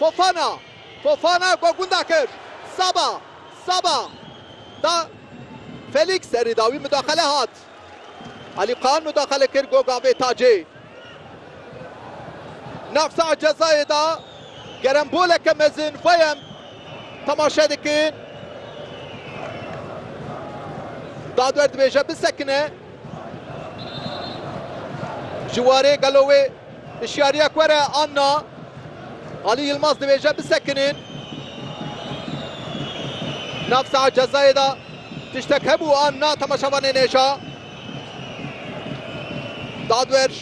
Fofana, Fofana ku gunda kir Saba, Saba da Felîks serî da wî mudaxele hat. Alî Kaan mudaxele kir ku gavê Tacê nav saha cezayê da geremboleke mezin xweyem temaşe dikin. Dadwer dibêje bisekine ji warê gelo wê. Hişyariya ku were Anna. Alî Yilmaz dibêje bisekinên. Nav saet cezayê de tiştek hebû Anna temaşevanên hêja. Dadwerj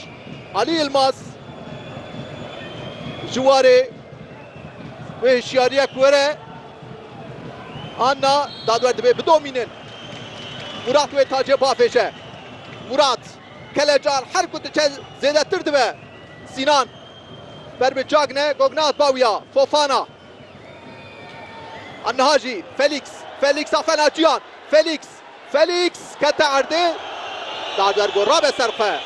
Alî Yilmaz ji warê wê hişyariya ku were Anna dadwer dibê bidomînin. Murat wê tacê bafêje. Murat. Kelecan her ku diçe zêdetir dibe. Sînan ber bi Cagne Gognaz bawiya Fofana. A niha jî Felîks. Felîks a fena ciyan. Felîks. Felîks kete erdê. Da ber ku rabe ser xwe.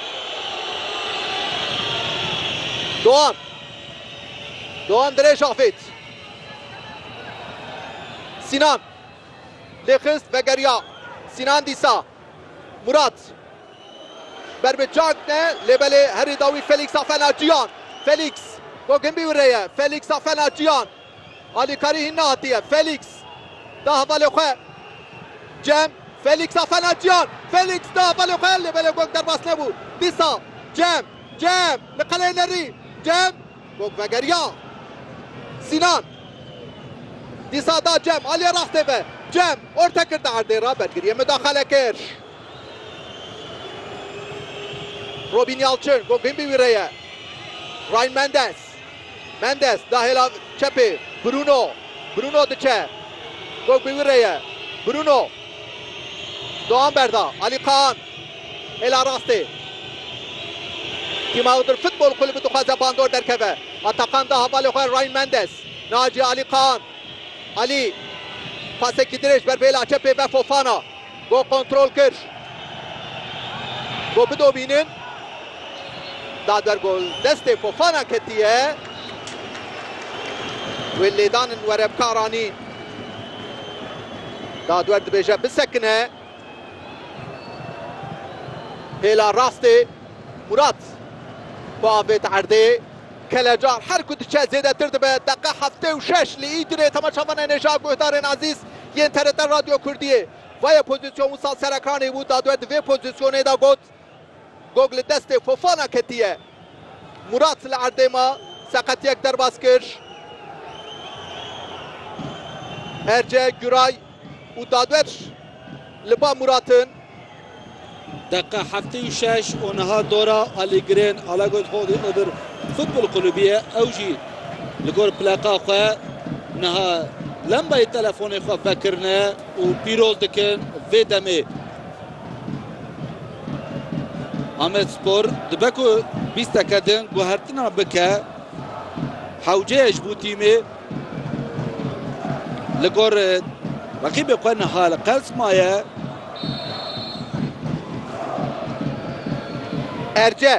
Doğan. Doğan dirêj avêt. Sînan lê xist vegeriya. Sînan dîsa. Murat. Ber bi çak ne lê belê herî dawî Felîksa Fenaçiyan. Felîks. Gog hin bî û rê ye. Felîksa Fenaçiyan. Alîkarî hîn nehatiye. Felîks. Da hevalê xwe. Cem. Felîksa Fenaçiyan. Felîks da hevalê xwe lê belê Gog derbas nebû. Dîsa. Cem. Cem. Li qeleyê nerî. Cem. Gog vegeriya. Sînan dîsa da Cem, aliyê rastê ve. Cem, orte kir di erdê re, bergiriyê mudaxale kir. Robîn Yalçin, gog bin bi wî re ye. Ryan Mendes. Mendes da hêla çepê. Bruno. Bruno diçe. Gog bi wî re ye. Bruno. Doğan berda. Ali Kaan. Hêla rastê tîma Iğdır Futbol Kulübü dixwaze bandor derkeve. Atakan da hevalê xwe Ryan Mendes, Naci Ali Kaan, Ali pasekî dirêj ber bêla çepê ve Fofana got kontrol kir got bidobînin da ber gol destê Fofana ketiye wê lêdanin were bikaranîn da ber dibêje bisekine. Hêla rastê Murat bi avêt erdê. Kelecar her ku diçe zêdetir dibe. Deqe heftê û şeş li Îdirê temaşevan ên hêja guhdarên Ezîz yên TRT Radyo Kurdiyê. Vayê pozîsyon wisa serekanî bû, dadwe di vê pozîsyonê de got, Gog li destê Fofana ketiye. Murat li erdê ma, seqetiyek derbas kir. Erce, Guray û dadwer li ba Murat in. Deqe heftê û şeş û niha dora Alî Girên a Lagoyt Holdî Iğdır Futbol Kulübî ye. Ew jî li gor pleqa xwe niha lembayê telefonê xwe vekirine û pîroz dikin. Vê demê. Amedspor dibe ku bîsteke din guhertina bike hewceyê ji bo tîmê li gor reqîbê xwe niha li qels maye. Erce.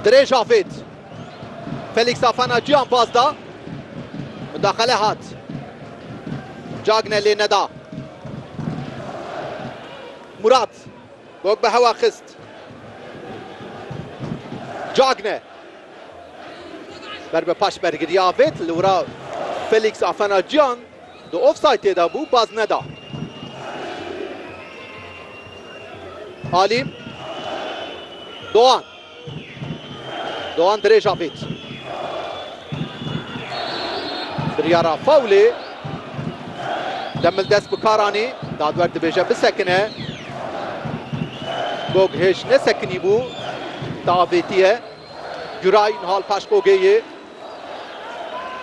Dirêj avêt. Felix Fofana cîyan pas da. Mudaxele hat. Cagne lê neda. Murat. Gog bi hewa xist. Cagne. Ber bi paş bergiriya avêt. Li wira Felix Fofana cîyan. Di ofsaytê de bû baz neda. Alî. Doğan. Doğan dirêj avêt. Biryara fawlê. Demil dest bi kar anî. Dadwer dibêje bisekine. Gog hêj nesekinî bû. Te avêtiye. Güray nihal paş Gogê yê.